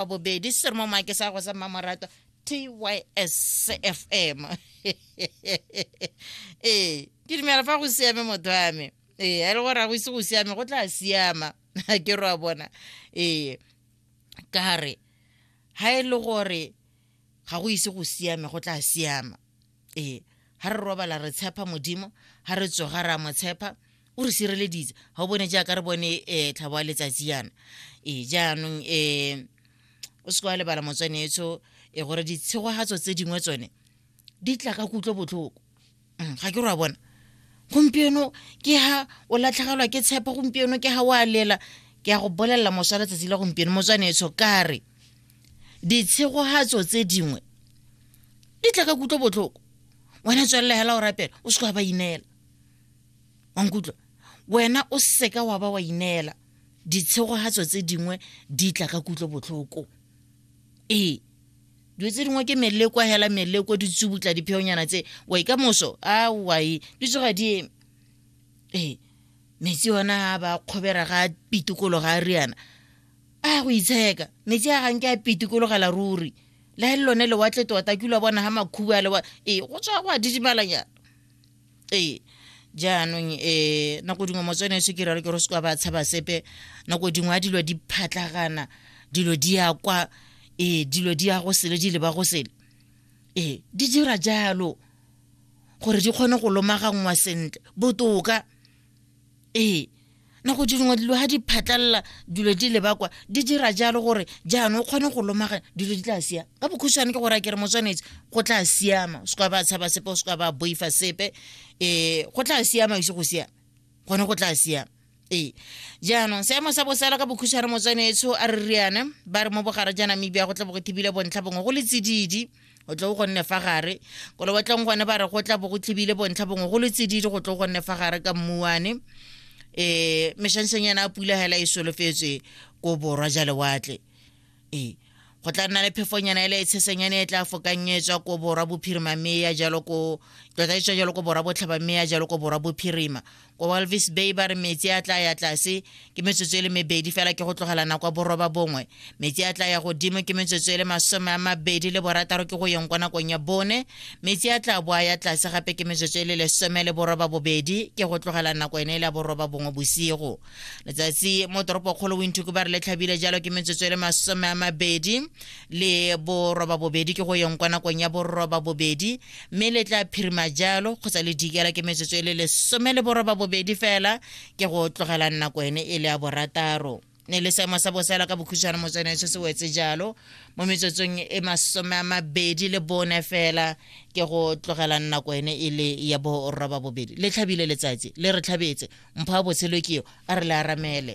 wa bobedi se re mo maake sa go sa mmamoratwa tys fm ee ke dumela fa go siame motho wa me ee a le gore a go ise go siame go tla siama a ke re wa bona ee ka re ga e le gore ga go ise go siame go tla siama ee ga re robala re tshepa modimo ga re tsoga re a mo tshepa o re sireleditse ga o bone jaaka re bone um eh, tlhabo wa letsatsi yana ee eh, jaanong um o seke wa lebala motswanetso e gore ditshegogatso tse dingwe tsone di tla ka kutlo botlhoko mm, ga ke re wa bona gompieno ke ha o latlhegelwa ke tshepo gompieno ke ha o a lela ke ya go bolelela moswa letsatsi la gompieno motswanetsho kare ditshegogatso tse dingwe di tla ka kutlo botlhoko wena tswelele hela o rapela o seka wa ba ineela wankutlwa wena o seka wa ba wa ineela ditshegogatso tse dingwe di tla ka kutlo botlhoko ee dilo tse dingwe ke meleko hela meleko di tsubutla dipheonyana tse wa ka moso a wae di tsoga di eme ee metsi ona a ba kgobera ga pitikolo ga a riana a go itsheka metsi a ganke a pitikologela ruri le le lone lewatle tota ke ula bona ga makhubu a lewa ee go tswa go a didimalanyana ee jaanong um nako dingwe motswene e sekere re ke re se kwa ba tshaba sepe nako dingwe a dilo di phatlagana dilo di ya kwa ee dilo di ya go sele di leba go sele ee di dira jalo gore di kgone go lomaganngwa sentle botoka ee nako dingwe dilo ga di phatlalela dilo di lebakwa di dira jalo gore jaanong o kgone go lomaga dilo di tla siama ka bokhutshwane ke gore a kere motswanetse go tla siama o seka ba tshaba sepe o seka ba boifa sepe um go tla siama ise go siama gone go tla siama ee jaanong seemo sa bosala ka bokhutshwane motswanetso a re riane ba re mo bogare ja namibia go tla bo go thibile bontlha bongwe go le tsididi go tlo go nne fa gare ko lewatleng gone ba re go tla bo go tlhibile bontlha bongwe go le tsididi go tlo go nne fa gare ka mmuane um e, meshanseng yana a pula hela e solofetswe ko borwa ja lewatle ee go tla nna le phefonyana ele e tshesenyane e tla fokang e tswa ko borwa bophirima mme ya jalo ko tota e tswa jalo ko borwa botlhaba mme ya jalo ko borwa bophirima kwa walvis bay ba re metsi a tla ya tlase ke metsotso e le mebedi fela ke go tlogela nako ya boroba bongwe metsi a tla ya godimo ke metsotso e le masome a mabedi le borataro ke go yeng kwa nakong ya bone metsi a tla boa ya tlase gape ke metsotso e le lesome le boroba bobedi ke go tlogela nako ene e le ya boroba bongwe bosigo letsatsi mo toropokgolo winthuku ba re le tlhabile jalo ke metsotso e le masome a mabedi le boroba bobedi ke go yeng kwa nakong ya boroba bobedi mme le tla phirima jalo kgotsa le dikela ke metsotso e le lesome le boroba bobedi fela ke go tlogelang nako ene e le ya borataro ne le seemo sa bosela ka bokhutshwane motsone se se wetse jalo mo metsotsong e masome a mabedi le bone fela ke go tlogelang nako ene e le ya boroba bobedi le tlhabile letsatsi le re tlhabetse mpho a botshelo keo a re le aramele